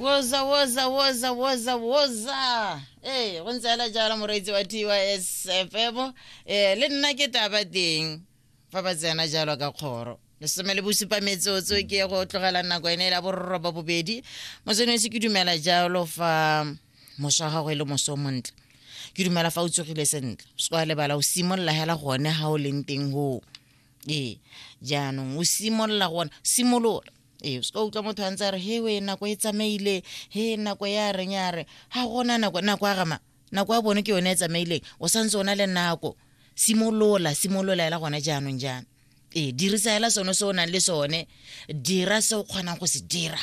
woza woza woza woza woza ee go ntse ala jalo moreetsi wa tys fm um le nna ke taba teng fa ba tsena jalo ka kgoro lesome le bosupa metsotso ke ye go tlogela nako ene la bororoba bobedi mosenesi ke dumela jalo fa moso wa gago e le moso o montle ke dumela fa o tsogile sentle o se kwa lebala o simolola hela gone ga o leng teng goo ee jaanong o simolola gona simolola ee o se ka utlwa motho a ntse a re he we nako e tsamaile he nako ya reng ya re ga gona nako nako ya gama nako ya bone ke yone e tsamaileng o santse o na le nako simolola simolola ela gona jaanong jaana ee dirisa ela sone se o nang le sone dira se o kgonang go se dira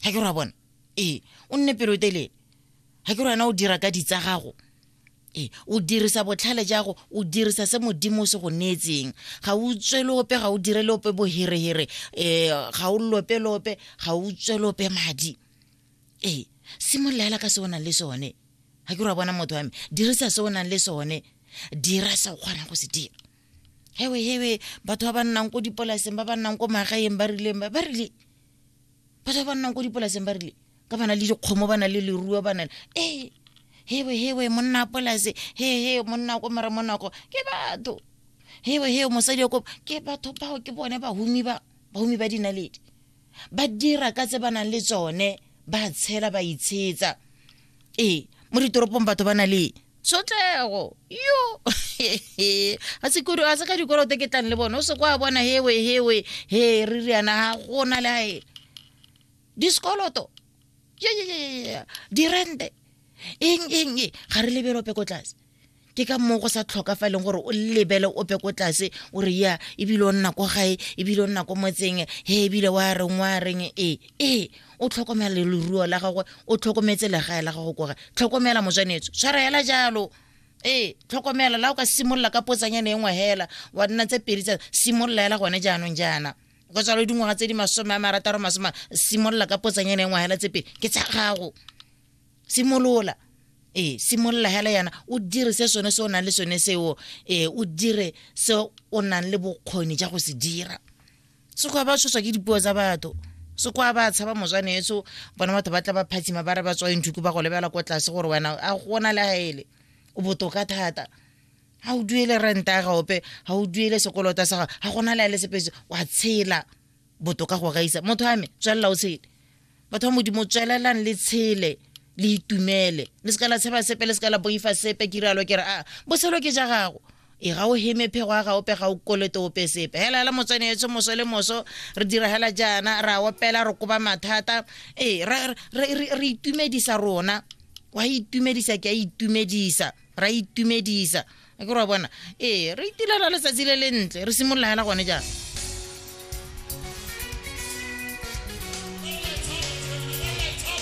ga ke re wa bona ee o nne pelotelele ga ke re wena o dira ka ditsa gago ee o dirisa botlhale jago o dirisa se modimo o se go neetseng ga o tswele ope ga o dire le ope boherehere um ga o lope le ope ga o tswele ope madi ee simololela ka se o nang le sone ga ke ra bona motho wa me dirisa se o nang le sone dira se o kgonang go se dira hewe hewe batho ba ba nnang ko dipolaseng ba ba nnang ko magaeng ba rileng ba rile batho ba nnang ko dipolaseng ba rile ka bana le dikgomo ba na le leruo ba na le ee hewe hewe monna polase he he monna ko mara monako ke batho hewe hewe mosadi yo ko ke batho bao ke bone bahumi ba bahumi ba dinaledi ba dira ka tse ba nang le tsone ba tshela ba itshetsa ee mo ditoropong batho ba na le tshotlego yo a sekuru a se ka dikolote ke tlang le bone o se kwa bona hewe hewe he re riana ga gona le gae disekoloto dirente eng eng e ga re lebelo peko tlase ke ka moo go sa tlhokafaleng gore o lebele ope ko tlase o re ya ebile o nna ko gae ebile o nna ko motseng he ebile wa reng wa reng ee ee o tlhokomela leruo la gagwe o tlhokometse legae la gago kore tlhokomela mojanetso tshwara hela jalo ee tlhokomela la o ka simolola ka potsanyana e nngwe hela wa nna tse pedi tsa simolola hela gone jaanong jaana go tswa le dingwaga tse di masome a marataro masome simolola ka potsanyana e nngwe hela tse pedi ke tsa gago simolola ee simolola hela yana o dire se sone se o nang le sone seo ee o dire se o nang le bokgoni ja go se dira sekgowa ba tshoswa ke dipuo tsa batho sekwa ba tshaba moswane eso bona batho ba tla ba phatsima ba re ba tswang thuku ba go lebela ko tlase gore wena a gona le gaele o botoka thata ga o duele renta ya gaope ga o duele sekolota sa gago ga gona le a le sepese wa tshela botoka go gaisa motho ame tswelela o tshele batho ba modimo tswelelang le tshele le itumele le se ka la tsheba sepe le se ka la boifa sepe ke rialo ke re a ah, botshelo ke ja gago e ga o heme phego a ga ope ga o kolete ope sepe hela hela motswene etsho moso le moso re dira hela jaana ra opela re koba mathata ee re itumedisa rona wa itumedisa ke a itumedisa ra itumedisa e ke re wa bona ee re itilela letsatsi le le ntle re simolola hela gone jang